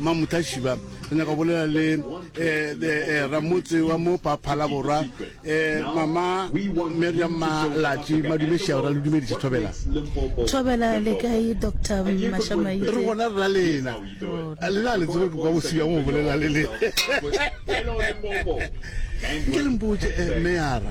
Mma Mutlashiba, re nyaka go bolela le eh, eh, eh, ramotse wa mo pa Phalaborwa, eh, mama Miriam Malatši, madumešia ra le dumediša Thobela. Thobela le kae Dr. Re Mashamaitse? gona re la lena. A Lena le tsebe ke kwa bosibja mo bolela le le. Ke le mpotše eh, meyara.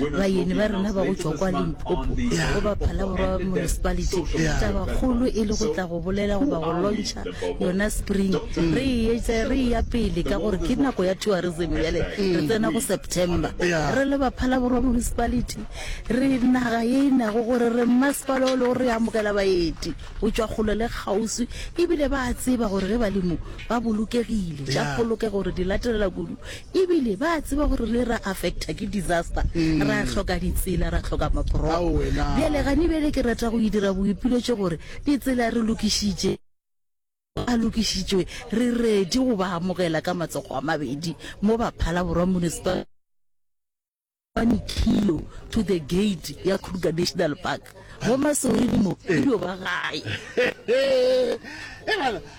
Bayeni ba rena ba go tšwa kwa Limpopo go ba Phalaborwa Municipality, taba kgolo e le go tla go bolela goba go lontšha yona Spring. Re e etša re eya pele ka gore ke nako ya tourism bjale re tsena go September. Re le ba Phalaborwa Municipality re naga ye e nago gore re mmasepala o lego re amogela baeti go tšwa kgole le kgauswi ebile ba a tseba gore ge ba le mo ba bolokegile. Tša polokego re di latelela kudu E bile ba a tseba gore re ra affecta ke disaster, ra hloka ditsela, ra hloka maporoko. Bjale gane bjale ke rata go idira boipiletšo gore ditsela re lokišitše, a lokišitšwe, re ready go ba amogela ka matsogo a mabedi mo Baphala Borwa Municipal. One kilo to the gate ya Kruger National Park go masoredimo e dio ba gae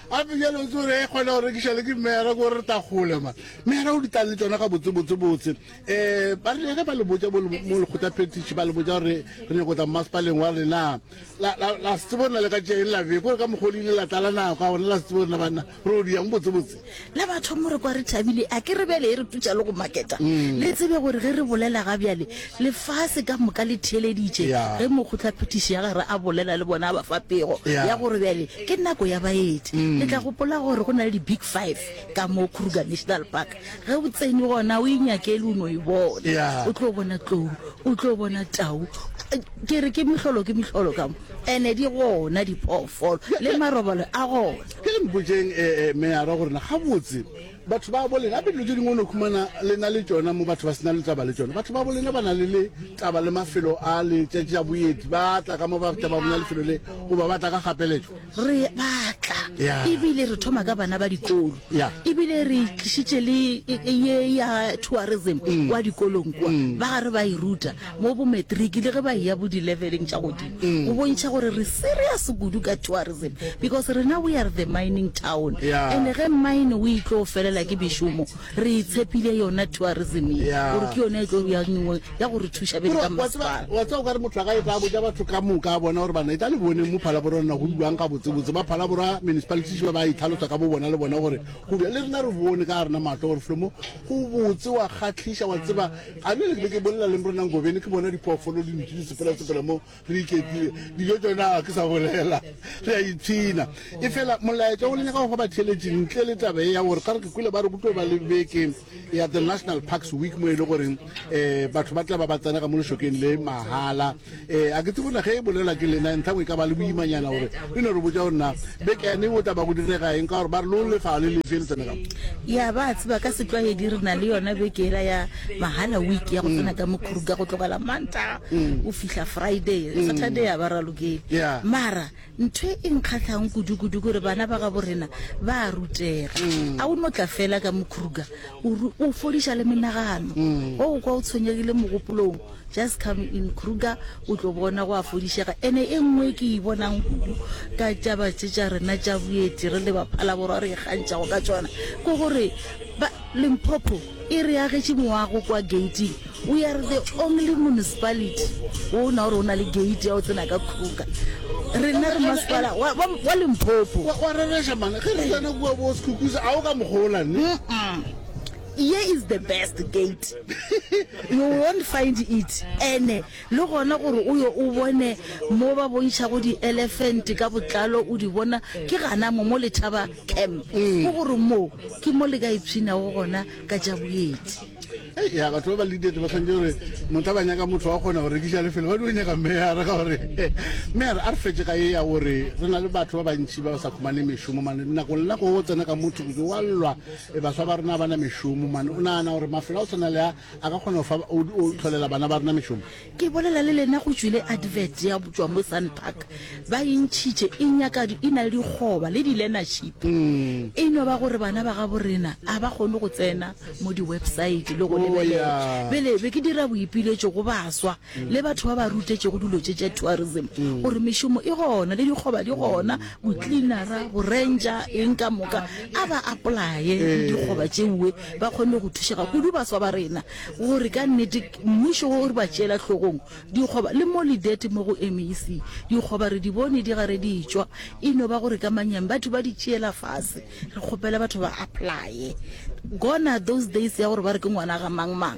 gape bjale o tsore e kgona go rekiša le ke mmera ko re tagole ma mmera o ditlang le tsona ga botsebotsebotse um eh, ba re ge ba le botsa mo lekgotla petiši ba le botsa gore re nyako tla mmasepaleng wa rena la setsebo rena le ka tšeeng la beko gore ka mokgwa o le ile la tlala nako a gona la setsebo rena banna Re o diang botsebotse? Le batho mo re kwa re thabile, a ke re bjale e re tutša le go maketa. Mm. Le tsebe gore ge re bolela ga bjale, lefase ka moka le theeleditše Yeah. ge mokgotlaphethiši ya gare a bolela le bona a ba fa pego Yeah. ya gore bjale ke nako ya baeti. Mm. Le tla gopola gore go na le di-big five ka mo Kruger National Park. Ge o tsene gona o inyakele o no e bona. Yeah. O tlo bona tlou, o tlo bona tau. Eh, Ke re ke mehlolo ke mehlolo ka mo. Ene di gona diphoofolo le marobalo a gona. Ke re mpotšeng Meyara gore na gabotse batho ba bo lena, gape dilo tše dingwe o no khumana le na le tšona mo batho ba sena le taba le tšona. Batho ba bo lena ba na le le taba le mafelo a le tšetša boeti, ba tla ka mo ba tla ba bona lefelo le, goba ba tla ka kgapeletšo. Re ba tla, e bile re thoma ka bana ba dikolo, e bile re tlišitše le ye ya tourism kwa dikolong kwa, ba re ba e ruta. mo bometriki le ge ba eya bo dileveleng tša godimo go bontšha gore re serious kudu ka tourism because rena we are the mining town and ge mine o itlo felela ke bešomo re itshepile yona tourism ye gore ke yona e tlo ya nngwe ya go re thuša bele ka masepala wa tsa o ka re motho a ka e tla botša batho ka moka a bona gore bana e tla le bone mo phalabora rona go buang ga botsebotse ba phalabora municipality ba ba itlhalosa ka bo bona le bona gore go le rena re bone ka rena maatlo gore flomo go botse wa kgatlhiša wa tseba A ne le ke bolela le mrona Ngobeni ke bona diphoofolo di nutše disepela-sepela mo re iketlile. Dijo tšona ga ke sa bolela. Re a ipshina. E fela molaetša o le nyaka go fa batheeletši ntle le taba e ya gore ka re ke kwele ba re go tlo ba le beke ya The National Parks Week mo e le goreng um batho ba tla ba ba tsenega mo lešokeng le mahala. Ee, a ke tsebo na ge e bolela ke lena ntlhang e ka ba le boimanyana gore le no re botša gore na bekane o taba go direga eng ka gore ba re lo lefa le lefe le tsenega ya ba tseba ka setlwaedi re na le yona bekera ya mahala week ya go mm. tsena ka mokhuruka go tlogela manta mm. o fihla friday mm. saturday ya ba ralokele mara Ntho e nkgahlago kudu-kudu gore bana ba gabo rena ba a rutega. Mm. A o no tla fela ka mo Kruger o re o fodiša le menagano. Mm. O kwa o tshwenyegile mogopolong, just come in Kruger o tlo bona go a fodišega. Ene e nngwe ke e bonang kudu ka tšaba tše tša rena tša boeti re le baphalaborwa re ikgantšhago ka tšona ke gore ba Limpopo e re agetše moago kwa gating we are the only municipality wo o na gore o na le gate ya o tsena ka kruka rena re masepala wa- wa wa lemphopo wa wa rereša mane ge re tsena kua bo sekhukusa a o ka mokgola ne Mm-mm. ye is the best gate you won't find it ene Le gona gore o yo o bone mo ba bontšhago dielefente ka botlalo o di bona, ke gana mo, mo Lethaba Camp. Ke gore moo ke mo le ka ipshinago gona ka tša boeti. Hei, ya, batho ba ba leader ba swantše gore motho a ba nyaka motho wa kgona go rekiša lefelo ba dio nyaka meyara ka gore meyara a re fetše ka ye ya gore re na le batho ba bantši ba ba sa khumane mešomo mane nako nna go tsena ka motho ke wa llwa e baswa ba rena ba na mešomo mane o nagana gore mafelo a o tshwana le a A ka kgona go fa o o tlholela bana ba rena mešomo. Ke bolela le lena go tšwile advert ya tšwa mo Sun Park ba e ntšhitše e nyaka di e na le dikgoba le di learnership e no ba gore bana ba gabo rena a ba kgone go tsena mo di website le go O, lebelela ya. bjale be ke dira boipiletšo go baswa le batho ba ba rutetšego dilo tše tša tourism gore mešomo e gona le dikgoba di gona bocleanera borentša eng ka moka a ba apply le dikgoba tšeoe ba kgone go thušega kudu baswa ba rena gore ka nnete mmušo o re ba tšeela hlogong dikgoba le mo lidete mo go mec dikgoba re di bone di gare di tšwa e no ba gore ka manyang batho ba di tšeela fase re kgopela batho ba applye gona those days ya gore ba re ke ngwana ga mang mang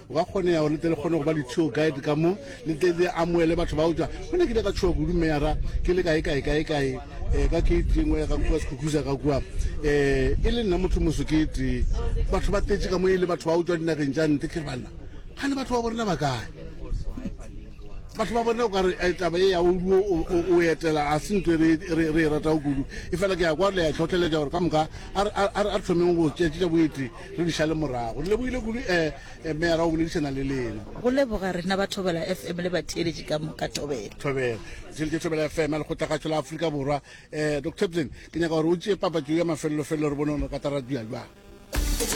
Go ka kgonega gore le tle le kgone go ba di-tour guide ka mo le tle le amoele batho ba utswa go ne ke ile ka tshoa kudu meyara ke le kae kae kae kae um ka ke tlengwe ya ka kua sekhukusa ka kua um e le nna motho moso ke tee batho ba tletše ka mo e le batho ba utswa dinageng tša nte ke banna ga le batho ba borena ba kae batho ba borena o ka re eh, taba e ya oduo o etela a se ntho e re e rata o kudu e fela ke ya kwa le ya tlhotlheletša gore ka moka a re thomeng go tšetšetša boete Re di šale morago. Re lebogile kudu eh, eh, meyara o boledišana le lena. Go leboga rena ba Thobela FM le batheeletši ka moka Thobela. Thobela. Tšheletše Thobela FM, lekgotlagatšo la Afrika Borwa. Eh, Dr. Tabson, ke nyaka gore o tšee papatšo ya mafelelo-felelo re bone gore re ka tara dira bjang.